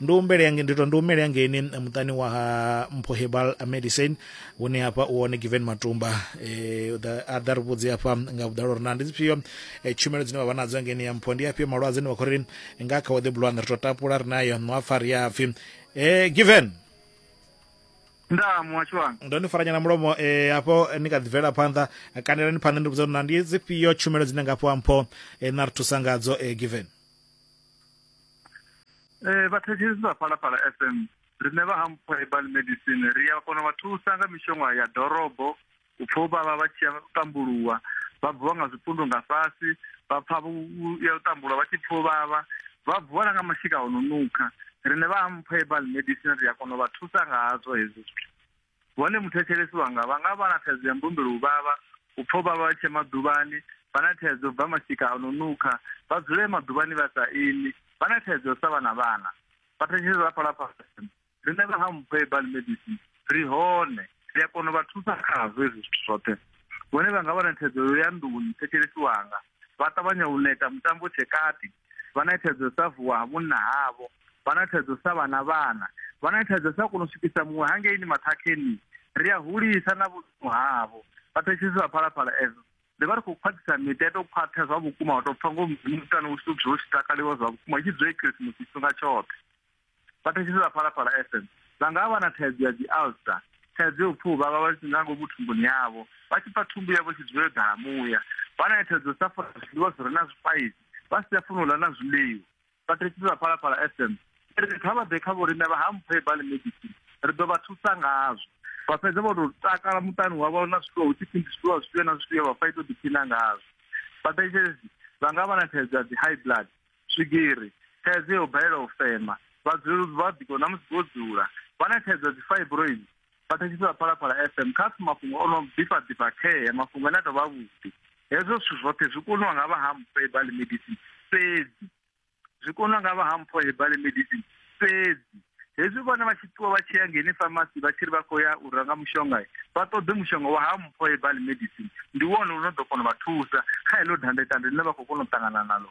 ndi humbele yange ndi to ndi humele hangeini muṱani wa ha mpho herbal medicine hune hafha u hone given matumba eh, da- a ḓa ri vhudze hafha nga vhuḓalo uri na ndi dzifhio eh, tshumelo dzine vha vha nadzo hangeini ya mpho ndi afhio malwadze ane vha khou ri nga kha waḓe bulwana ri to tapula ri nayo no apfa ri a pfi eh, given ndaa muhasho wanga ndo ni faranyana mulomo eh, hafho ni kha ḓi bvela phanḓa eh, kanelani phanḓa ndi vhudza uri na ndi dzifhio tshumelo dzine nga fhiwa mpho eh, na ri thusa ngadzo eh, given Eh vhathetshelesi vha Phalaphala FM riṋe vha Hampfo Herbal Medicine ri a kona vha thusa nga mishonga ya dorobo u pfha u vhavha vha tshi ya tambuluwa vha bvuwa nga zwipundu nga fhasi vha pfha vhu ya u tambulwa vha tshi pfha u vhavha vha bvuwa na nga mashika o no nukha riṋe vha Hampfo Herbal Medicine ri a kona u vha thusa nga hazwo hezwo zwithu. Vhone muthetshelesi wanga vha nga vha na thaidzo ya mbumbelo u vhavha, u pfa u vhavha vha tshi ya maḓuvhani, vha na thaidzo u bva mashika a no nukha, vha dzule maḓuvhani vha sa imi, vha na thaidzo ya u sa vha na vhana. Vhathetshelesi vha fhaḽa fhasi vha ri, Riṋe vha Hampho Herbal Medicine ri hone, ri a kona u vha thusa khazwo hezwi zwithu zwoṱhe. Vhone vha nga vha na thaidzo ya nḓuni, muthetshelesi wanga vha ṱavhanya u neta mutambo u tshe kati. vha na thaidzo sa vuwa ha munna havho vha na thaidzo sa vhana vhana vha na thaidzo sa kona u swikisa muṅwe hangeini maṱhakheni ri a hulisa na vhudzimu havho vhathetshelesi vha phalaphala edzo ri vha ri khou khwaṱhisa miṱa to khwaṱha zwa vhukuma wa tou pfa ngo mutani u tshi dzula u tshi takaliwa zwa vhukuma i tshi dzula i khirisimusi tshifhinga tshoṱhe vha thetshelesa phalaphala fm vha nga vha na thaidzo ya dzi alster thaidzo yo pfha uvhavha vha nga ngomu thumbuni yavho vha tshi pfa thumbu yavho tshi dzula yo ḓala muya vha na thaidzo sa funa zwiḽiwa zwi re na zwipaisi vha si a funa u ḽa na zwiḽiwa vha thetshelesa phalaphala fm ri kha vha ḓe kha vhorine vha ha mphe bali medicine ri ḓo vha thusa ngazwo vha fhedza vho tou takala muṱani wavho na zwiḽiwa hu tshi pfi ndi zwiḽiwa zwifhio na zwifhio vha fa ito ḓiphina ngazwo vhathetshelesi vha nga vha na thaidzo ya dzi high blood swigiri, thaidzo ya u balelwa u fema, vhadzulapo vha biko na musi vho dzula vha na thaidzo ya dzifibroids, vha thetshelesa Phalaphala FM kha pfi mafhungo o no ḓifha ḓifha khee, mafhungo ane a tou vha avhuḓi. Hezwo zwithu zwoṱhe zwi koniwa nga vha ha Mpho Herbal Medicine fhedzi. Zwi koniwa nga vha ha Mpho Herbal Medicine fhedzi. Hezwi vhone vha tshi ṱuwa vha tshi ya ngeni famasi vha tshi ri vha khou ya u renga mushonga, vha ṱoḓe mushonga wa ha Mpho Herbal Medicine, ndi wone u no ḓo kona u vha thusa kha heḽo dandetande ḽine vha khou kona u ṱangana naḽo.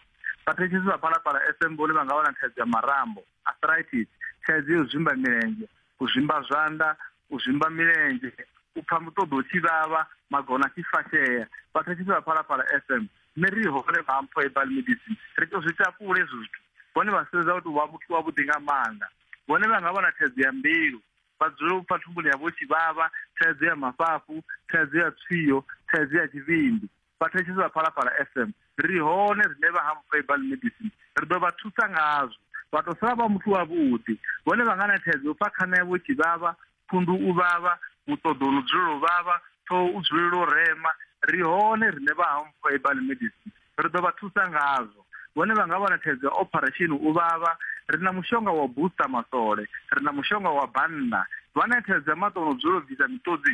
Vhathetshelesi vha Phalaphala FM vhone vha nga vha na thaidzo ya marambo, arthritis, thaidzo ya u zwimba milenzhe, u zwimba zwanḓa, u zwimba milenzhe, u pfa muṱoḓo u tshi vhavha, magona a tshi fashea. Vhathetshelesi vha Phalaphala FM, nṋe ri hone vha mpho herbal medicine. Ri tou zwi takula hezwo zwithu. Vhone vha sedza u tou vha muthu wavhuḓi nga maanḓa. Vhone vha nga vha na thaidzo ya mbilu, vha dzula u pfa thumbuni yavho u tshi vhavha, thaidzo ya mafhafhu, thaidzo ya tswio, thaidzo ya tshivhindi. Vhathetshelesi vha Phalaphala FM ri ri hone rine vha Ham Herbal Medicine ri ḓo vha thusa ngazwo. Vha tou sala vha muthu wavhuḓi. Vhone vha nga na thaidzo yo pfa khana yavho i tshi vhavha, phundu u vhavha, muṱoḓo u no dzulela u vhavha, ṱhoho u dzulela u rema. Ri hone rine vha Ham Herbal Medicine ri ḓo vha thusa ngazwo. Vhone vha nga vha na thaidzo ya opharesheni u vhavha, ri na mushonga wa u booster masole, ri na mushonga wa bannda. Vha na thaidzo ya maṱo o no dzulela u bvisa miṱodzi,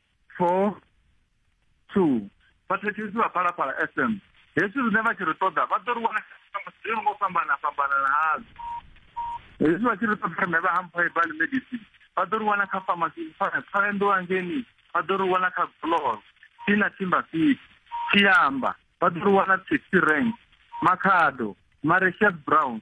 four two vha thetshelesi vha phalaphala f m hezwi zwine vha tshi ri ṱoḓa vha ḓo ri wana zwi ngo fhambana fhambanana hazwo hezwi vha tshi ri ṱoḓa rine vha hampha ibali medicine vha ḓo ri wana kha famasi pfaendo angeni vha ḓo ri wana kha glor tina timba fiti tshiamba vha ḓo ri wana taxi rank makhado mareshias brown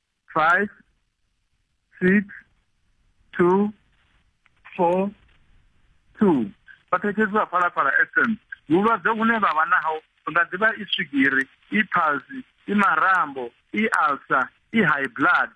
five six two four two vhathetshetsi vha phalaphala fm vhulwadze vhune vha vha naho nga ḓivha i swigiri i phalsi i marambo i alsa i high blood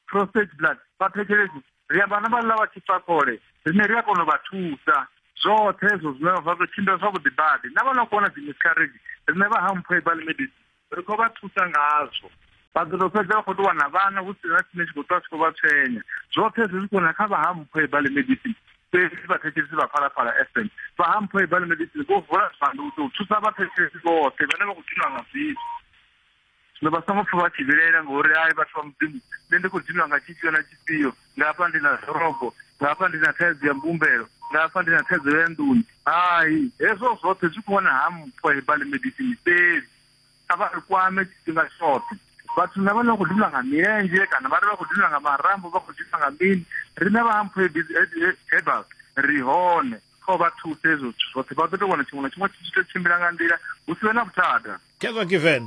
prostate blood vhathetshelesi ri amba na vhaḽa vha tshifhakole rine ri a kona u vha thusa zwoṱhe hezwo zwine zwa ḓo tshimbila zwavhuḓi badi na vha na kuwana dzi miscarriage rine vha ha mphoebal medicine ri khou vha thusa ngazwo vha ḓo tou fhedza vha khou tou wana vhana hu si na tshine tshi khou ṱwa tshi khou vha tshwenya zwoṱhe zwi zwikho na kha vha ha mpho ibale medicine fhedzi vhathetshelesi vha phalaphala fm vha ha mpho ibale medicine vho vula zwanḓa u tou thusa vhathetshelesi vhoṱhe vhane vha khou dinwa nga zwithu zwino vha songo pfa vha tshi vhilaela ngori ai vhathu vha mudzimu nṋe ndi khou dinwa nga tshifhio na tshifhio nga hafha ndi na ḓorobo nga hafha ndi na thaidzo ya mbumbelo nga hafha ndi na thaidzo ya nḓuni hai hezwo zwoṱhe zwi khou wana ha mpho hebali medicine fhedzi a vha ri kwame tshifhinga tshoṱhe vhathu na vhane vha khou dinwa nga milenzhe kana vhane vha khou dinwa nga marambo vha khou dinwa nga mini riṋe vha ha mpho hebal ri hone kha u vha thusa hezwo zwithu zwoṱhe vha ḓo tou wana tshiṅwe na tshiṅwe tshi tshi tou tshimbila nga nḓila hu si vhe na vhuthada kevha given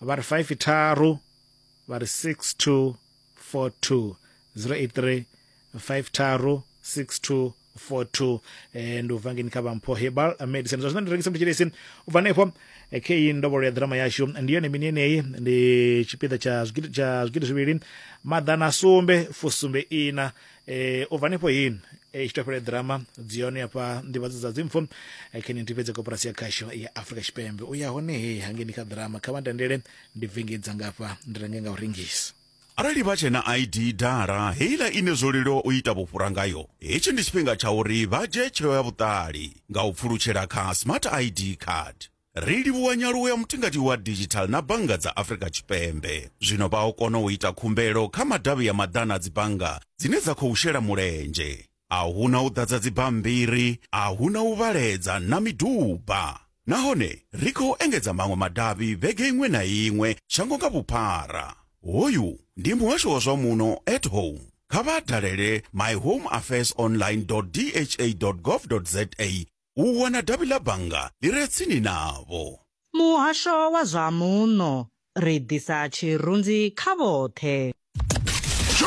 vha ri 5 tharu vha ri 6242 083 5 tharu 6242 eh, ndi u bva ngeni kha vhampho herbal medicine zwa zwino ndi rengisa mutshilesi u bva hanefho eh, kheyi ndovholo ya ḓirama yashu ndi yone mini yeneyi ndi tshipiḓa tsha zwigidi tsha zwigidi zwivhili maḓana sumbe fusumbe ina e u bva nefho hin e tshi topele drama dzi hone hafha nḓivhadzo dza dzimpfo e khe ni ntifhedze koporasi ya khasho ya afrika tshipembe u ya hone he hangeni kha drama kha vha ndendele ndi vengedza ngafha ndi renge nga u rengisa arali vha tshena id dala heiḽa ine zwo leluwa u ita vhufhura ngayo hetshi ndi tshifhinga tsha uri vha dzhie tsheo ya vhuṱali nga u pfulutshela kha smart id card ri livhuwa nyaluwo ya mutingati wa digital na bannga dza afrika tshipembe zwino vha o kona u ita khumbelo kha madavhi ya maḓana a dzibannga dzine dza khou shela mulenzhe a hu na u ḓadza dzibammbiri a hu na u vhaledza na miduba nahone ri khou engedza maṅwe madavhi vhege iṅwe na iṅwe shango nga vhuphara hoyu ndi muhasho wa zwa muno at home kha vha dalele myhomeaffairsonline dha gov za u wana davhi ḽa bannga ḽi re tsini navho. Muhasho wa zwa Muno, Ri ḓisa tshirunzi kha vhoṱhe.